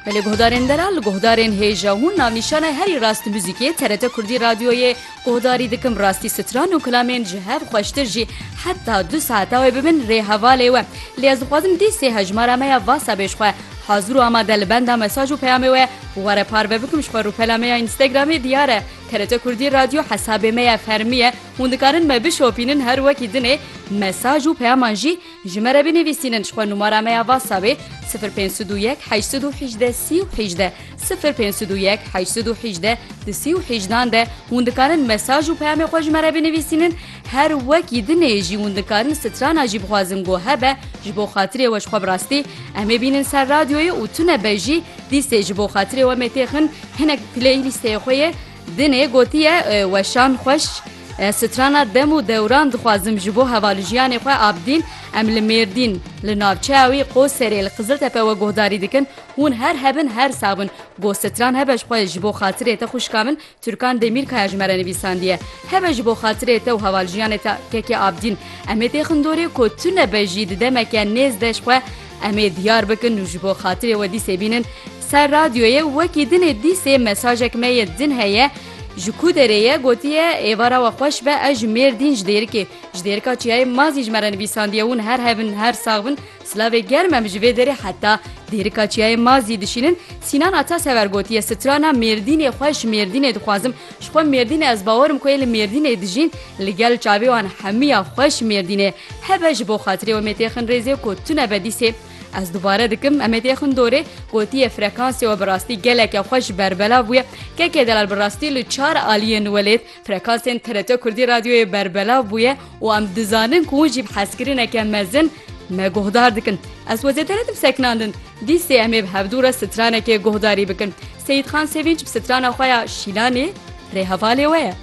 Belê guhdarên me re li guhdarên hêja hûn nav nîşanay herî rast muzîkê TRT Kurdî Radyoyê guhdarî dikim rastî stran û kilamên ji hev xweştir jî heta du saeta wê bibin rê hevalê we lê ez dixwazim dîsê hejmara me ya vasa bê ji xwe hazir û amade li benda mesaj û peyamê we were parve bikim ji xwe rûpela me ya Instagramê diyar e TRT Kurdî Radyo hesabê me ya fermî ye hûn dikarin me bişopînin her wekî dinê mesaj û peyaman jî Ji me re binivîsînin ji xwe numara me ya WhatsAppê sifir pênc sed û yek heşt sed û hîjdeh sî û hîjdeh sifir pênc sed û yek heşt sed û hîjdeh di sî û hîjdan de hûn dikarin mesaj û peyamê xwe ji me re binivîsînin her wekî dinê jî hûn dikarin strana jî bixwazin ku hebe ji bo xatirê we ji xwe bi rastî em ê bînin ser radyoyê û tune be jî dîsê ji bo xatirê we mêtêxin hinek playlîsteyê xwe yê Dinê gotiye weşan xweş strana dem û dewran dixwazim ji bo hevalujiyanê xwe abdîn em li mêrdîn li navçeya wî qoserê li qiziltepe we guhdarî dikin hûn her hebin her sabin go stran hebe xwe ji bo xatirê te xwişka min turkan demîrkaya ji me re nivîsandiye hebe ji bo xatirê te û hevaljiyanê te kekê abdîn emê tê xindorê ku tu nebejî di demeke nêz de xwe emê diyar bikin û ji bo xatirê we dîsê bînin Ser radyoyê wekî dinê dîsê mesajek me yê din heye ji ku derê ye gotiye êvara we xweş be ez ji mêrdîn ji dêrikê ji dêrika çiyayê mazî ji me re nivîsandiye hûn her hevin her sax bin silavê germ em ji vê derê heta dêrika çiyayê mazî dişînin sînan atasever gotiye strana mêrdînê xwe ji mêrdînê dixwazim ji xwe mêrdînê ez bawer im ku ê li mêrdînê dijîn li gel çavê wan hemiya xwe ji mêrdînê hebe ji bo xatirê we mêtêxin rêzê ku tune be dîsê Ez dubare dikim Emêdiyê Xundorê gotiye frekansê we bi rastî geleke xwe ji berbela bûye. Kekê delal bi rastî li çar aliyên welêt frekansên TRT Kurdî radyoyê berbela bûye û em dizanin ku hûn jî bi hezkirineke mezin me guhdar dikin. Ez we zêde nedim sekinandin. Dîsê em ê bi hevdû re stranekê guhdarî bikin. Seyîdxan Sevînc bi strana xwe ya Şîlanê rê hevalê we ye.